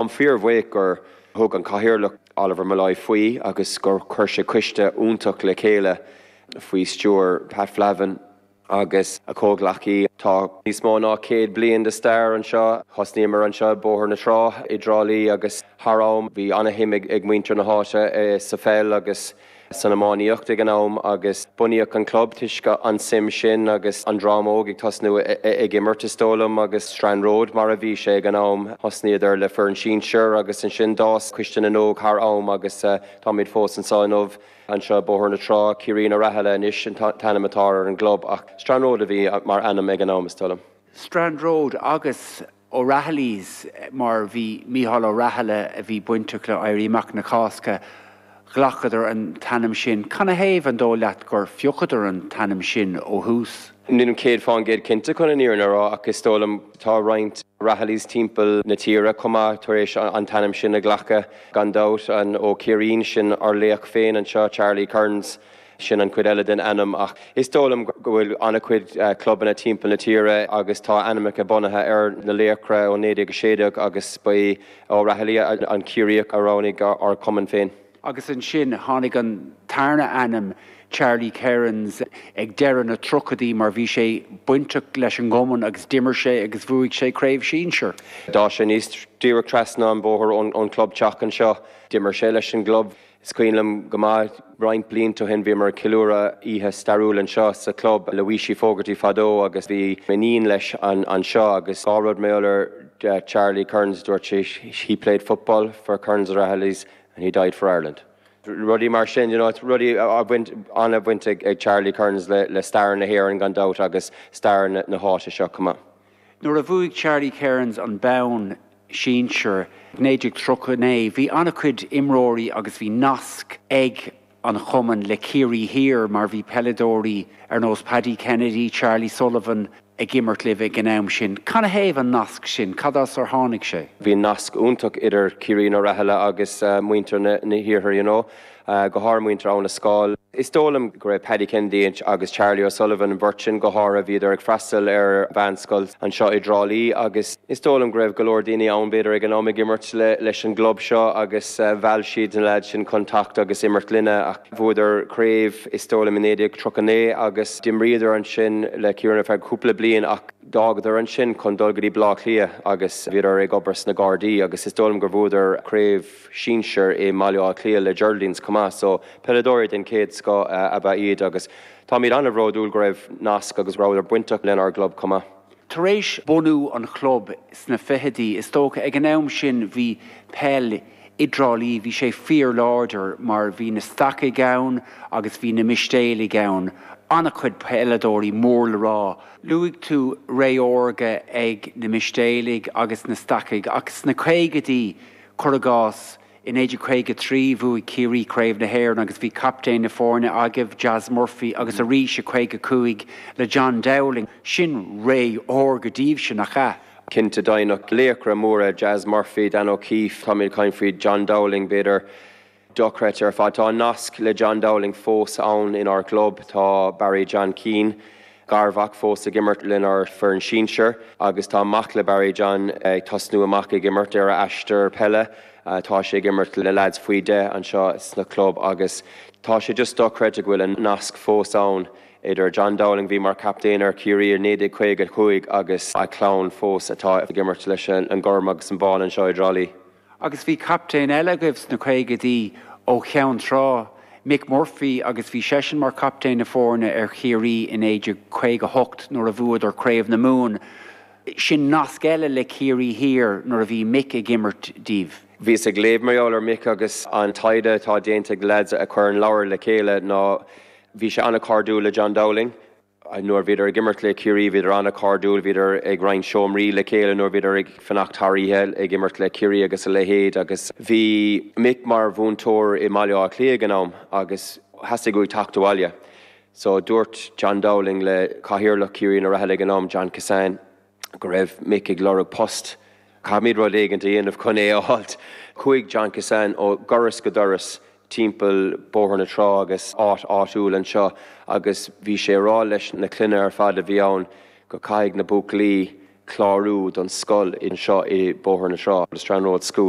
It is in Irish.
Táim fíorbhuíoch gur thug an Cathaoirleach, Oliver Molloy, faoi agus gur chuir sé coiste iontach le chéile faoi stiúir Pat Flavin agus a chomhghleacaí. Tá níos mó ná céad bliain de stair anseo. Thosnaíomar anseo i Bóthar na Trá i dTrá Lí agus thar am bhí ana-shuim ag muintir na háite sa pheil agus san iománaíocht ag an am agus bunaíodh an club toisc an tsuim sin agus an dream óg ag tosnú ag imirt, is dóigh liom, agus Strand Road mar a bhí sé ag an am. Thosnaíodar le foireann sinsear agus ansin d'fhás Coiste na nÓg thar am agus táimid fós anseo inniu. Anseo i Bóthar na Trá, Céirín Ó Rathaille anois an t-ainm atá ar an gclub ach Strand Road a bhí mar ainm ag an am, is dóigh liom. Strand Road agus. O'Rahillys mar bhí Micheál Ó Rathaille a bhí bainteach le Éirí Amach na Cásca, ghlacadar an t-ainm sin. Canathaobh, an dó' leat, gur phiocadar an t-ainm sin ó thús? Nílim céad fán gcéad cinnte chun an fhírinne a rá ach is dóigh liom tá roinnt Rahillys timpeall na tíre chomh maith tar éis an t-ainm sin a ghlacadh. Gan dabht, an Ó Céirín sin ár laoch féin anseo, Charlie Kerins? Sin an chuid eile den ainm ach is dóigh liom go bhfuil an-chuid clubanna timpeall na tíre agus tá ainmneacha bunaithe ar na laochra ó 1916 agus ba í Ó Rathaille an Ciarraíoch a roghnaigh ár gcumann féin. Agus ansin tháinig an tarna ainm, Charlie Kerins, ag deireadh na dtríochaidí mar bhí sé bainteach leis an gcumann agus d'imir sé agus bhuaigh sé Craobh Sinsear. D'fhás sé aníos díreach trasna an bhóthair ón chlubtheach anseo. D'imir sé leis an gclub Is cuimhin liom go maith, roinnt blianta ó shin, bhíomar ag ceiliúradh oíche stairiúil anseo sa Chlub le Weeshie Fogarty fadó agus bhí iníon leis anseo agus dhá rud mar gheall ar Charlie Kerins, dúirt sé he played football for Kerins O'Rahillys and he died for Ireland. Rudaí mar sin, you know, rudaí a bhain, ana-bhaint ag Charlie Kerins le stair na hÉireann gan dabht agus stair na háite seo chomh maith. Nuair a bhuaigh Charlie Kerins an bonn sinsear i 1939, bhí an-chuid imreoirí agus bhí nasc ag an chumann le Ciarraí Thiar mar bhí peileadóirí ar nós Paddy Kennedy, Charlie Sullivan ag imirt libh ag an am sin. Can a thaobh an nasc sin? Cad as ar tháinig sé? Bhí nasc iontach idir Céirín Ó Rathaille agus muintir na hiarthair, you know. go háirithe muintir Abha na Scáil. Is dóigh liom go raibh Paddy Kennedy agus Charlie O'Sullivan, an bheirt sin go háirithe, bhíodar ag freastal ar mheánscoil anseo i dTrá Lí agus is dóigh liom go raibh go leor daoine ann b'fhéidir ag an am ag imirt leis an gclub seo agus mheall siad na leaids sin chun teacht agus imirt linne. Bhuadar craobh is dóigh liom i 1939 agus d'imríodar ansin le Ciarraí ar feadh cúpla bliain ach d'fhágadar ansin chun dul go dtí Baile Átha Cliath agus bhíodar ag obair sna Gardaí agus is dóigh liom gur bhuadar craobh sinsear i mBaile Átha Cliath le Geraldines chomh maith, so peileadóirí den chéad scoth ab ea iad agus táimid an-bhródúil go raibh nasc agus go rabhadar bainteach lenár gclub chomh maith. Tar éis bunú an chlub sna fichidí, is dócha, ag an am sin bhí peil i dTrá Lí, bhí sé fíorláidir mar bhí na Stacaigh ann agus bhí na Mistéalaigh ann, an-chuid peileadóirí mór le rá. Luaigh tú ré órga ag na Mistéalaigh agus na Stacaigh ach sna caogaidí, Cuir i gcás, i 1953 bhuaigh Ciarraí Craobh na hÉireann agus bhí captaen na foirne agaibh, Jas Murphy, agus arís i 55 le John Dowling. Sin ré órga daoibhse, nach ea? Cinnte, deimhneach. Laochra móra, Jas Murphy, Dan O'Keeffe, táimid ag caint faoi John Dowling, b'fhéidir. Dochreidte ar fad. Tá an nasc le John Dowling fós ann inár gclub, tá Barry John Keane, garmhac, fós ag imirt lenár bhfoireann sinsir agus tá mac le Barry John ag tosnú amach ag imirt ar a aistear peile. Tá sé ag imirt le leads faoi 10 anseo sna club agus tá sé just dochreidte go bhfuil an nasc fós ann idir John Dowling, a bhí mar chaptaen ar Chiarraí i 1955, agus a chlann fós atá ag imirt leis an gorm agus an bán anseo i dTrá Lí. Agus bhí captaen eile agaibh sna caogaidí ó Cheann Trá, Mick Murphy agus bhí seisean mar captaen na foirne ar Chiarraí i 1958 nuair a bhuadar Craobh na Mumhan. Sin nasc eile le Ciarraí Thiar nuair a bhí Mick ag imirt daoibh. Bhíos ag léamh mar gheall ar Mick agus an taighde atá déanta ag leads a chuir an leabhar le chéile ná bhí sé an-chairdiúil le John Dowling. Nuair bhíodar ag imirt le Ciarraí bhíodar an-chairdiúil, bhíodar ag roinnt seomraí le chéile nuair bhíodar ag fanacht thar oíche ag imirt le Ciarraí agus a leithéid agus bhí Mick mar mhúinteoir i mBaile Átha Cliath ag an am agus theastaigh uaidh teacht abhaile. So dúirt John Dowling le cathaoirleach Chiaraínigh Uí Rathaille ag an am, John Kissane, go raibh Mick ag lorg post. Caithfimid rud éigint a dhéanamh chun é a fháilt. Chuaigh John Kissane ó dhoras go doras timpeall Bóthar na Trá agus áit áitiúil anseo agus bhí sé ag rá leis na clainne ar fad a bhí ann go caithfidh na buachaillí clárú don scoil anseo i Bóthar na Trá, The Strand Road School.